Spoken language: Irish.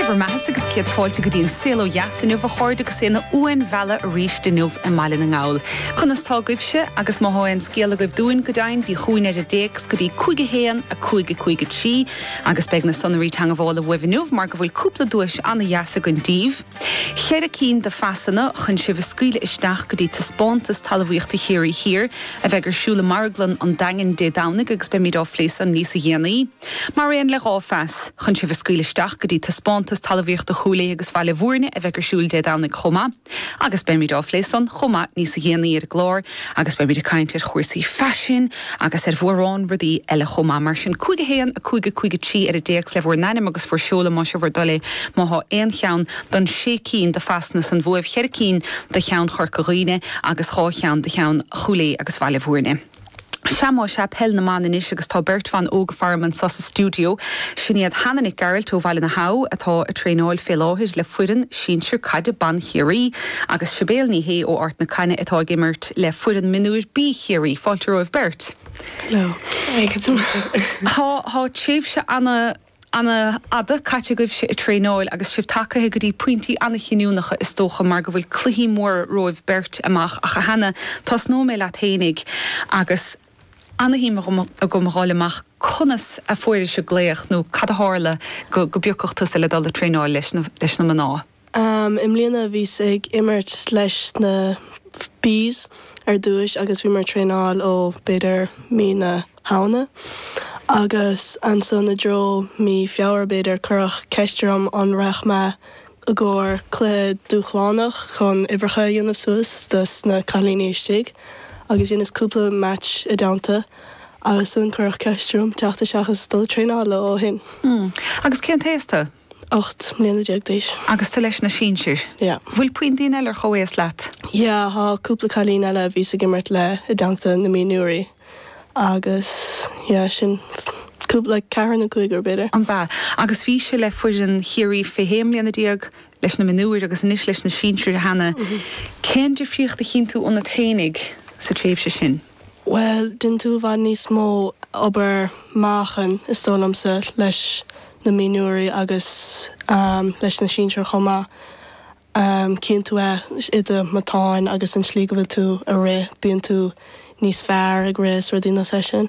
Dé bhur mbeathasa agus céad fáilte go dtí an Saol Ó Dheas inniu a chairde agus é ina uain bhreá arís inniu i mBaile na nGall. Conas tá agaibhse? Agus má thá aon scéal agaibh dúinn go deimhin bí chugainn ar an dtéacs go dtí 5 1 5 5 3 agus beidh na sonraí teangmhála uaibh inniu mar go bhfuil cúpla duais ana dheas againn daoibh. Cheithre cinn de phasanna chun sibh a scaoileadh isteach go dtí Taispeántas Talamhaíochta Chiarraí Thiar a bheidh ar siúl i Marglann an Daingin Dé Domhnaigh agus beimíd á phlé san níosa dhéanaí. Mar aon le dhá phas chun sibh a scaoileadh isteach go dtí Taispeántas Talamhaíochta Chúil Aodha agus Bhaile Mhúirne a bheidh ar siúl Dé Domhnaigh chomh maith agus beimíd á phlé san chomh maith níosa dhéanaí ar an gclár agus beimíd ag caint ar chúrsaí faisin agus ar mhórán rudaí eile chomh maith mar sin 5 1 5 5 3 ar an dtéacs le bhur n-ainm agus bhur seoladh más é bhur dtoil é má thá aon cheann don sé cinn do phasanna san bhuaibh cheithre cinn do cheann Chorca Dhuibhne agus dhá cheann do cheann Chúil Aodha agus Bhaile Mhúirne. Sea más ea Peil na mBan anois agus tá beirt bhan óga faram anso sa studio. Sin iad Hannah Nic Gearailt ó Bhaile na h-Abha atá ag traenáil fé láthair le foireann sinsir caide ban Chiarraí agus Sibéal Ní Shé ó Ard na Caithne atá ag imirt le foireann mionúir B Chiarraí. Fáilte romhaibh beirt. Hello. Tá tréimhse ana. Ana fhada caite agaibhse ag traenáil agus sibh tagaithe go dtí pointí ana chinniúnacha is dócha mar go bhfuil cluichí móra romhaibh beirt amach ach a Hannah tosnóidh mé leat féinig agus ana shuim agam a fháil amach conas a fuairis an glaoch nó cad a tharla go go bpiocfadh tusa le dul ag traenáil leis na leis na mná. I mbliana bhíos ag imirt leis na B's ar dtúis agus bhíomar ag traenáil ó b'fhéidir mí na Samhna agus ansan i dtreo mí Feabhra b'fhéidir cuireadh ceist orm an raghadh mé i gcóir cluiche dúshlánach chun uimhreacha a dhéanamh suas do na cailíní istigh agus dheineas cúpla match ina dteannta agus ansan cuireadh ceist orm teacht isteach agus dul ag traenáil leo ó shin. Agus cén t-aos tu? Ocht mbliana déag d'aois. Agus tú leis na sinsir? Yeah. Bhfuil puinn daoine eile ar chomhaois leat? Yeah, thá cúpla cailín eile a bhíos ag imirt le i dteannta na mionúirí agus yeah, sin cúpla, like ceathrar nó cúigear b'fhéidir. Ab ea? Agus bhís-se le foireann Chiarraí fé sé mbliana déag, leis na mionúir agus anois leis na sinsir cheana. Cén difríocht a chíonn tú ionat féinig sa tréimhse sin? Bhuel, déanann tú i bhfad níos mó obair meáchain, is dóigh liomsa, leis na mionúirí agus leis na sinsir chomh maith. Cíonn tú é i do matáin agus an tslí go bhfuil tú a' rith, bíonn tú níos fearr ag rith is rudaí mar sin.